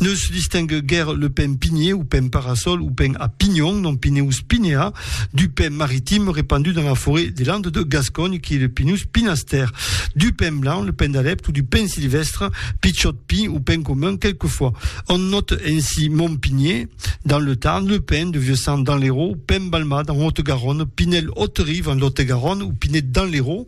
Neus distingue guère le pin pinier ou pin parasol ou pin à pignon, nom Pinus pinea, du pin maritime répandu dans la forêt des Landes de Gascogne qui est le Pinus pinaster, du pin blanc, le pin d'Alep ou du pin sylvestre, pitchot pin ou pin commun quelquefois. On note ainsi Mont Pinier dans le Tarn, le pin de Vieux-Sang dans l'Hérault, pin balmat en Haute-Garonne, pinel haute-rive en Lot-et-Garonne ou pinet dans l'Hérault,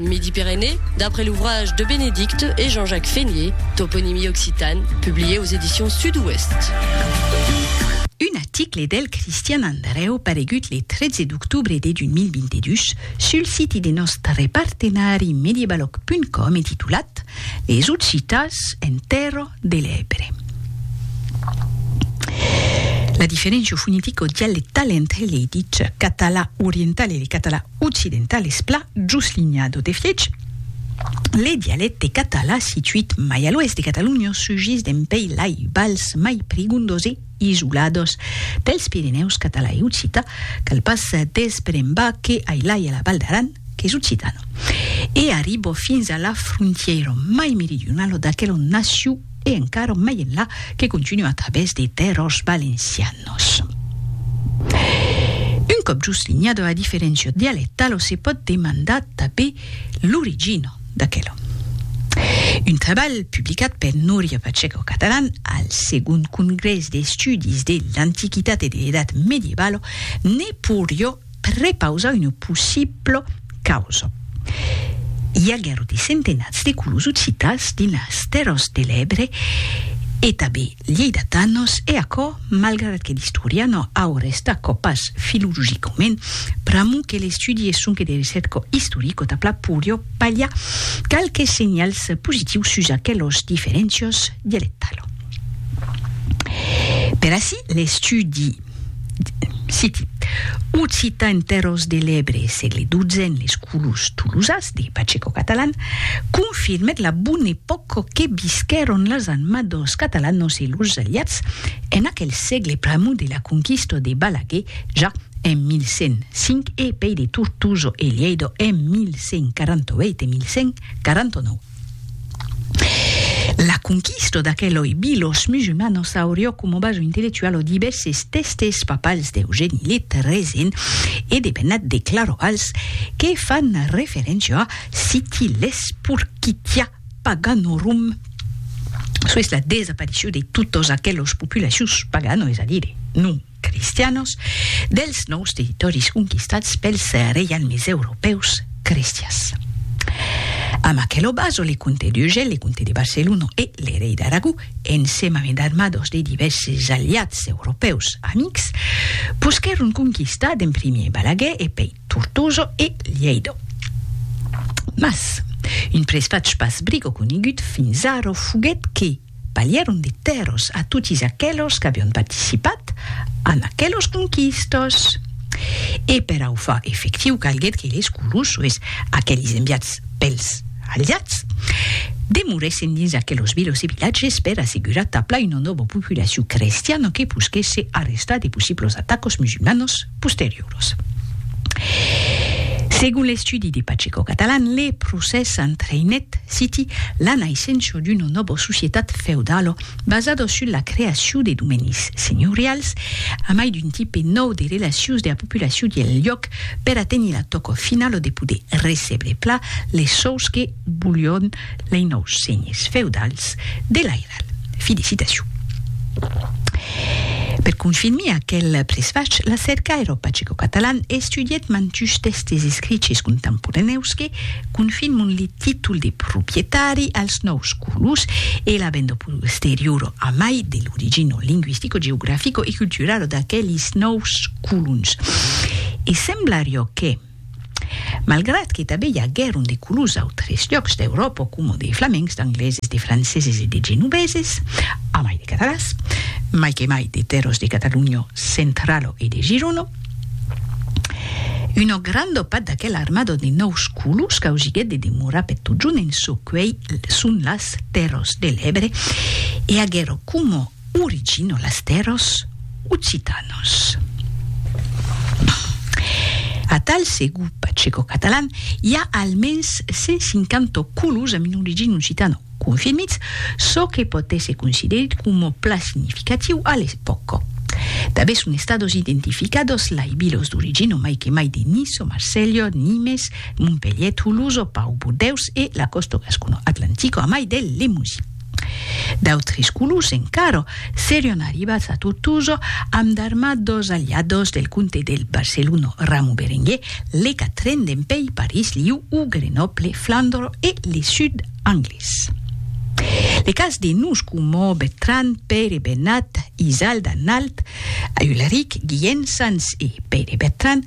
Midi-Pyrénées, d'après l'ouvrage de Bénédicte et Jean-Jacques Fénié, Toponymie occitane, publié aux éditions Sud-Ouest. Un article del Christian Andreu paregut le 13 d'octobre de 2022 sul siti de nòstre partenari mediebaloc.com e titulat Les Occitans en tèrra de l'Ebre. La diferéncia fonetica o dialectala entre le ditz catalan oriental e le catalan occidental es pla just linha d'o de fièch. Le dialècte català situit mai a l'oèst de Catalonha sugís dempuèi lai vals mai prigondos e isolados dels Pirenèus català e occità, cal pas desbrembar que ai lai a la Val d'Aran qu'es occitana, e arriba fins a la frontièira mai meridionala d'aquela on nasciu e encara mai enlà que continua a través de terrors valencianos. Un còp just linhada la diferéncia dialectala se pòt demandar tanben l'origina d'aquela. Un trabalh publicat per Núria Pacheco Catalán al segond congrès d'estudis de l'Antiquitat e de l'Edat Medievala ne poiriá Prepausar una possibla causa. I aguèron de centenats de colons occitans dins las Terras de l'Ebre e tanben lheidatanos e aquò malgrat que l'istorian Aures d'aquò pas filologicament pr'amor que l'estudi es sonque de recerca istorica tà pla pòria balhar qualques senhals positius sus aquelas diferéncias dialectalas. Per ací l'estudi. Citi. Occita en Terròs de l'Ebre, sègle XII en les colors tolosas de Pacheco Catalan, confirmèt la bona epòca que visquèron las anma dos Catalanos e los Aliats en aquel sègle pr'amor de la conquista de Balaguer ja en 1105 e pei de Tortosa e Lhèida en 1148 e 1149. La conquista d'aqueloi bilos musulmanos aurió coma baso intellectual o divèrses tèstes papals d'Eugèni Lit, Rezin e de Bennat de Clarovals que fan referéncia a Sitiles Purquitia Paganorum, çò es la desaparicion de totas aquelas populacions paganas, es a dire, non. cristianos, dels nòus territòris conquistats pels reialmes europèus cristians. Amb aquelo baso le comte d'Urgell, le comte de Barcelona e le rei d'Aragó, ensema amb d'armados de divèrses aliats europèus amics, posquèron conquistar d'en primièr Balaguer e pei Tortosa e Lhèida. Mas, un presvatge pas brigo conegut fins ara foguèt que, Balhèron de tèrros a totis aquelos qu'avion participat en aquelos conquistos. E per au far efectiu calguèt que les Colosois, aquelis enviats pels Aliats, demorèssen dins aquelos vilos e vilatges per assegurar tabla una nòva populacion crestiana que posquèsse arrestar de possiblos atacos musulmanos. posterioras. Segon l'estudi de Pacheco Catalan, le procès entraïnèt citi la naissença d'una nòva societat feudala basada sus la creacion de domenis senhorials a mai d'un tipe nòu de relacions de la populacion del lhòc per aténher la tòca finala de poder recebre pla les sòus que volián Lei nòus senhes feudals de l'airal. Felicitacion. Per confinmir aquel presfach, la Cerca Aeropacico-Catalan estudièt mantush tèxtes escriches contemporanèus que confinmon li títol de proprietari als nòus colons e la vendo posteriora a mai de l'origino linguistico, geografico e culturalo d'aquelis nòus colons. E semblarió que. Malgrat que tanben i aguèron de colons d'autres lhòcs d'Euròpa coma de flamencs, d'angleses, de franceses e de genoveses, amai de catalans, mai que mai de tèrras de Catalonha centrala e de Girona, una granda part d'aquela armada de nòus colons causiguèt de demorar per totjorn en çò qu'uèi son las Tèrras de l'Ebre e aguèron coma Originolastéros occitanos. Atal segu pacecocatalàn, i a almens 150 colos amb un origin occitano confirmits, çò que pòt èsser considerit coma plan significatiu a l'epòca. Tanben son estados identificados lai vilos d'origin o mai que mai de Niço, Marselha, Nimes, Montpelhier, Toulouse, Pau, Bordeus e la còsta gascono-atlantica a mai del Lemosin. D'autres colors encara serion arribats a Tortosa amb d'armats dos aliados del comte del Barcelona Ramon Berenguer, le quatren dempèi París, Lió o Grenoble, Flandre e le sud anglés. Le cas de nos coma Bertran, Pere, Bernat, Isald, Arnald, Ulric, Guillen, Sanç e Pere Bertran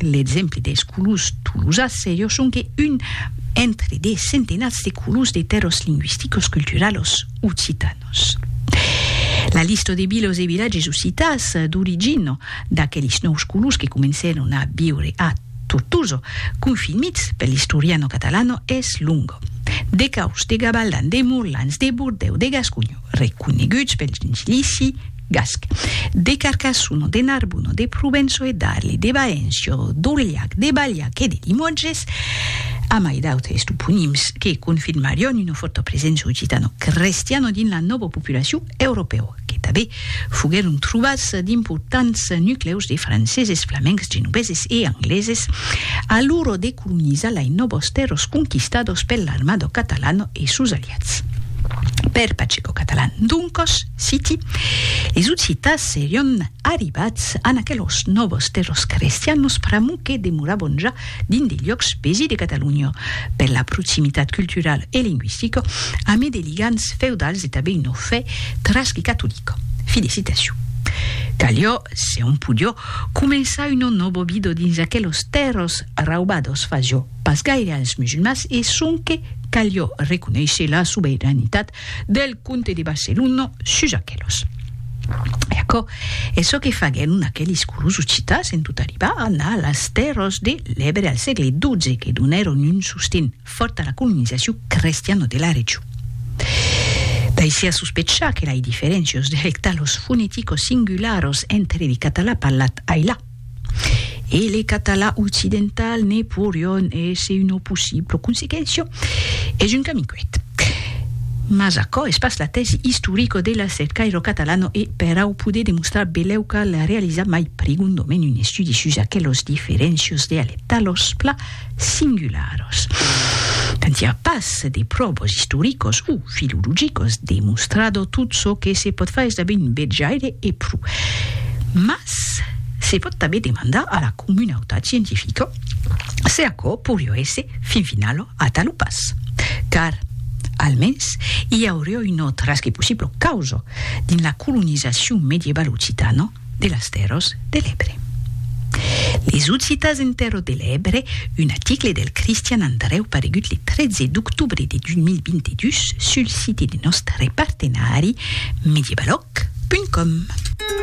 L'exemple des colors tolosas seriós sonque un entre de centenats de colors de tèrros lingüisticos culturalos occitanos. La lista de vilas e vilatges occitans d'origina d'aqueles nòus colors que comencèron a viure a Tortosa, confirmits per l'Historiano Catalano, es longa. De Caus, de Gabaldan, de Morlans, de Bordèu, de Gasconha, reconeguts pel gentilici, Gasc. De Carcassono, de Narbono, de Provenço e d'Arly, de Baençio, d'Aurillac, de Balhac e de Limoges, amai d'autres toponims que confirmarion una fòrta presença occitano-crestiana dins la nòva populacion europèu, que tanben foguèron trobats d'importants nuclèus de franceses, flamencs, genoveses e angleses a l'ora de colonizar lai nòvas tèrras conquistadas per l'armada catalana e sos aliats. Per Pacheco Catalan, doncas, Citi, es Occitans serion arribats an aquelos nòvos de los crestianos pr'amor que demorabon ja dins de liòcs besi de Catalunya, per la proximitat culturala e lingüistica amé de ligams feudals e tabé una fe tras que catolica. Fi de citacion. Calió, se on podió, començar una nòva vida dins aquelos tèrras raubados fasió pas gaire als musulmans e sonque calió reconéisher la sobeiranitat Del comte de Barcelona sus aquelos. E aquò es çò que faguèron aquelis curusos citas en tot arribar a anar a las tèrras de l'Ebre al sègle XII que donèron un sosten fòrt a la colonizacion crestiana de la region. Daisiá sospechar que lai diferéncios dialectalos foneticos singularos entre li catalan parlat ailà, e le català occidental ne porion èsser una possibla consequéncia, es un camin cuet. Mas aquò es pas la tèsi istorica de la cercaire catalana e per au poder demostrar belèu cal realizar mai prigondament un estudi sus aquelas diferéncias dialectalas, pla, singularos. Tant i a pas de pròvas istoricos o filologicos demostrado tot çò que se pòt far es tanben un bètjaire e pro. Mas se pòt tanben demandar a la comunautat scientifica se aquò poirió èsser fin finalo atal o pas. Car, almens, i aurió una trasque possibla causa dins la colonizacion medievaloccitana, de las Tèrras de l'Ebre. Les Occitas en Tèrras de l'Ebre, un aticle del Cristian Andrèu paregut le 13 d'octobre de 2022 sul site de nòstre partenari medievalòc.com.